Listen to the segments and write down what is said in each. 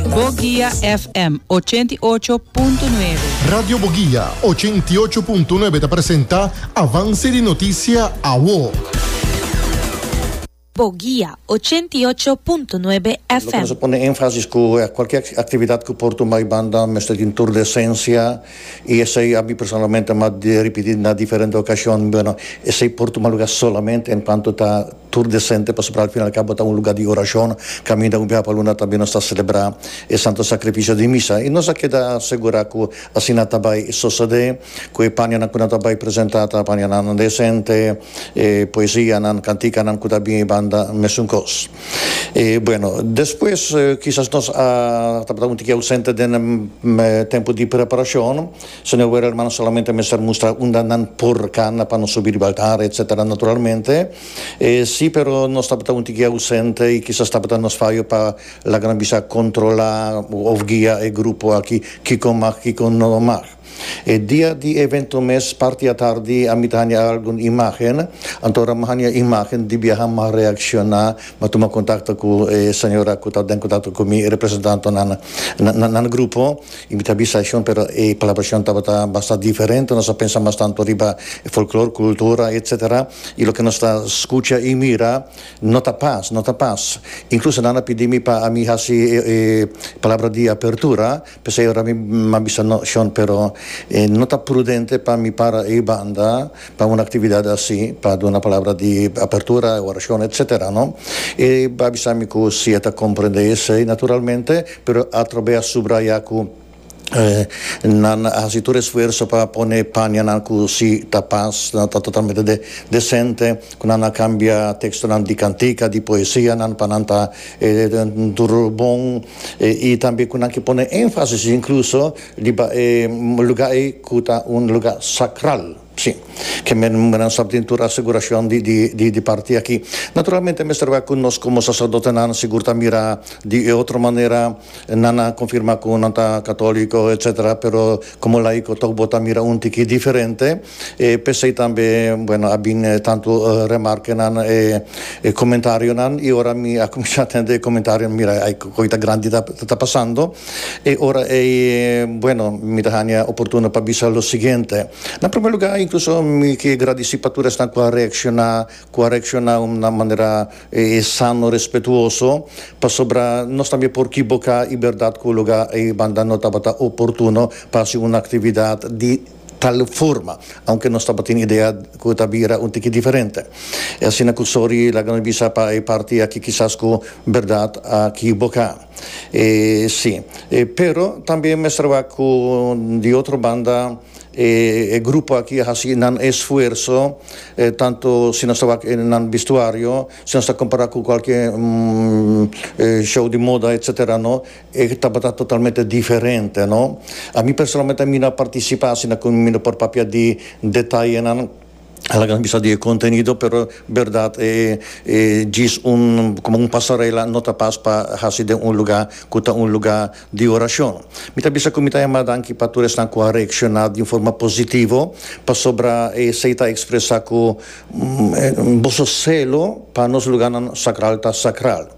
Boguia FM ochenta i ocho punto nuebe. Radio Boguia ochenta i ocho punto nuebe ta presenta Avance di Noticia Awo. Boguia ochenta i ocho punto nuebe Lo cu nos a FM. pone énfasis cu e cualkier actividad cu por tumba e banda mester tin tur decencia y esey a mi personalmente m'ha ripiti na diferente ocacionnan, bueno, esey por tumba lugar solamente en cuanto ta Tur desente pasobra al final cabo ta un lugar di oracion. Caminda un biaha pa luna tambe nos ta celebra e Santo Sacrificio di Misa y nos a keda segura cu asina ta bay sosode, cu e panianan cu nan ta bay presenta ta panianan desente, e poesianan, canticanan cu ta bin banda mesun cos. E bueno, despues kisas nos a tabata un tiki ausente den e tempo di preparacion. Señor Ware hermano solamente mester mustra unda nan por cana pa nos subi riba altar etc. Naturalmente e si pero nos tabata un tiki ausente y kisas tabata nos fayo pa laga nos bisa controla of guia e grupo aki kiko mag kiko no mag. E dia di evento mes parti atardi a mi ta hanja algun imagen anto ora mi hanja imagen di biaha mi a reacciona mi a tuma contacto cu e señora cu ta den contacto cu mi e representantonan nan grupo Y mi ta bisa ashon, pero e palabra ashon tabata basta diferente. Nos a pensa mas tanto riba e folklor, kultura, etc. Y loke nos ta skucha y mira no ta pas, no ta pas. Inkluso nan a pidi mi pa ami hasi e palabra di apertura, p'esei ora mi a bisa no, Shon, pero no ta prudente pa mi para ei banda, pa un actividad así pa duna palabra di apertura, oracion etc. No? E a bisa mi cu si e ta comprende esey naturalmente, pero atrobe a subraya cu nan a haci tur esfuerzo pa pone panianan cu si ta pas, nan ta totalmente de decente, cu nan a cambia textonan di cantica, di poesianan pa nan ta tur bon y tambe cu nan ke pone enfasis incluso Riba e luga ei ku ta un luga sakral, si, ke menan sa tin tur asegurashon di parti aki. Naturalmente mester wak ku nos komo saserdotenan sigur ta mira di e otro manera, nan a konfirmá ku nan ta katoliko, etsetera, pero komo laiko tok bo ta mira un tiki diferente. E p'esei tambe, bueno, a bin e tantu remarkenan, e e comentarionan, i ora mi a kuminsá tende e komentarionan, mira, ai koe ta grandi ta ta pasando. E ora ei, bueno, mi ta hania oportuno pa bisa lo siguiente, na promé lugá, inkluso mi ke gradisí pa tur esnan ku a reakshoná, ku a reakshoná na un manera sano, respetuoso, pasobra nos tambe por kiboká i bèrdat ku lugá ei banda no tabata oportuno pa hasi un aktividat di. tal forma, aunke nos tabatin idea cu e ta bira un tiki diferente. E asina cu Sori laga nos bisa pa e parti aki kisas cu berdad a kiboca. E si. E pero tambe mester wak cu di otro banda e e grupo aki a haci nan esfuerso, tanto si nos ta wak e nan bistuario, si nos ta compara cu cualkier show di moda etc. No. E tabata totalmente diferente, no? Ami personalmente ami no a participá asina cu mi no por papia di detayenan a laga nos bisa di e contenido, pero berdad e e djis un como un pasarela no ta pas pa haci den un lugar cu ta un lugar di oracion. Mi ta bisa cu mi ta yama danki pa tur esnan cu a reacciona di un forma positivo pasobra esey ta expresa cu boso celo pa nos lugarnan sacral ta sacral.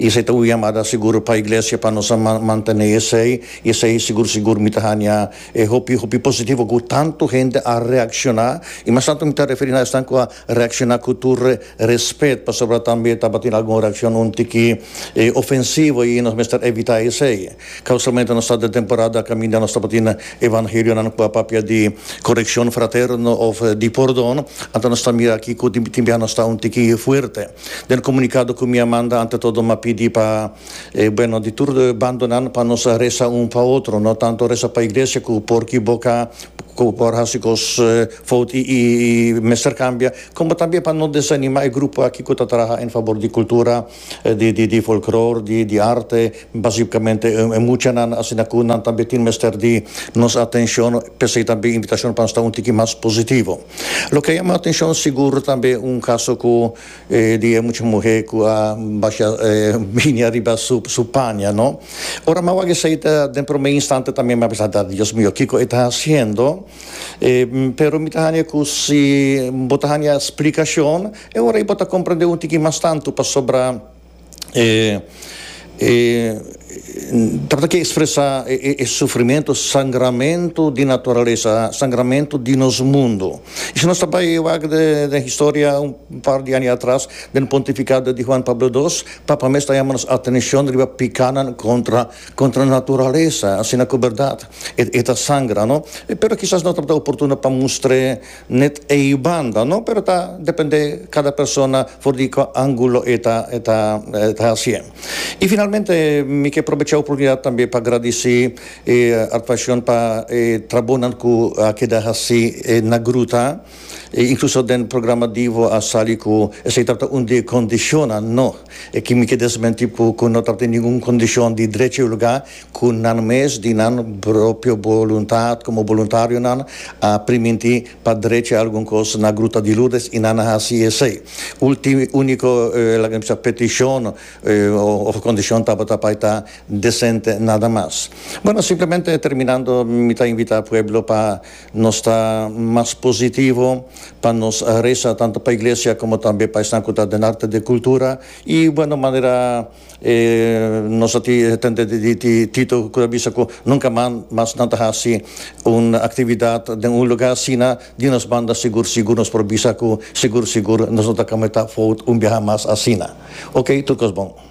I esei ta un yamada sigur pa Iglesia pa nos a mantené esei, i esei sigur sigur mi ta haña e hopi hopi positivo ku tantu hende a reakshoná, i mas tantu mi ta referí na esnan ku a reakshoná ku tur respet, pasobra tambe tabatin algun reakshon un tiki ofensivo i nos mester evitá esei. Ka usualmente nos ta den temporada kaminda nos tabatin evangelionan ku a papia di korekshon fraterno òf di pordon, anto nos ta mira aki ku tin tin biaha nos ta un tiki fuerte. Den comunicado cu mi a manda ante todo m'a pidi pa e bueno di tur bando nan pa nos a reza un pa otro, no tanto reza pa iglesia cu por kiboca, cu por haci cos fout y mester cambia, como tambe pa no desanima e grupo aki cu ta traha en fabor di cultura, di folklor, di arte, basicamente e muchanan, asina cu nan tambe tin mester di nos atencion, p'esey tambe invitacion pa sta un tiki mas positivo. Lo ke a yama atenshon sigur tambe un kaso ku e di e mucha muhé ku a basha e binia riba su su paña no. Ora m'a wak esei ta den promé instante tambe m'a pensa ta Dios mio kiko e ta hasiendo e pero mi ta haña ku si bo ta haña splikashon e ora ei bo ta komprendé un tiki mas tantu pasobra E trata ke ekspresá e sufrimentu, sangramentu di naturalesa, sangramentu di nos mundu. I si nos ta bai wak den historia un par di aña atras, den e pontifikado di Huan Pablo Dos, Papa mes ta yama nos atenshon riba pikanan kontra kontra naturalesa, asina ku bèrdat e ta sangra, no? Pero kisas no tabata oportuno pa mustr'é. Net e yi banda no pero ta depende cada persona for di cu angulo e ta e ta e ta hacié. Y finalmente mi ke probecha e oportunidad tambe pa gradici e Artvacion pa e trabonan cu a keda haci na gruta y incluso den programa Divo a sali cu esey tabata un di e condicionnan no, e ki mi ke desmenti cu no tabata ningun condicion di drecha y lugar Ku nan mes di nan propio boluntat komo boluntarionan a primintí pa drecha algun kos na Gruta di Lourdes i nan a hasi esei. Ulti úniko laga mi bisa petishon òf kondishon tabata pa e ta desente nada mas. Bueno, simplemente terminando mi ta invitá pueblo pa nos ta mas positivo, pa nos resa tantu pa iglesia komo tambe pa esnan ku ta den arte de kultura i bueno manera. E nos a tende di Tito ku ta bisa ku nunka mas nan ta hasi un aktividat den un lugá asina. Di nos banda sigur sigur nos por bisa ku sigur sigur nos no ta kometá fout un biaha mas asina. Oke, tur kos bon.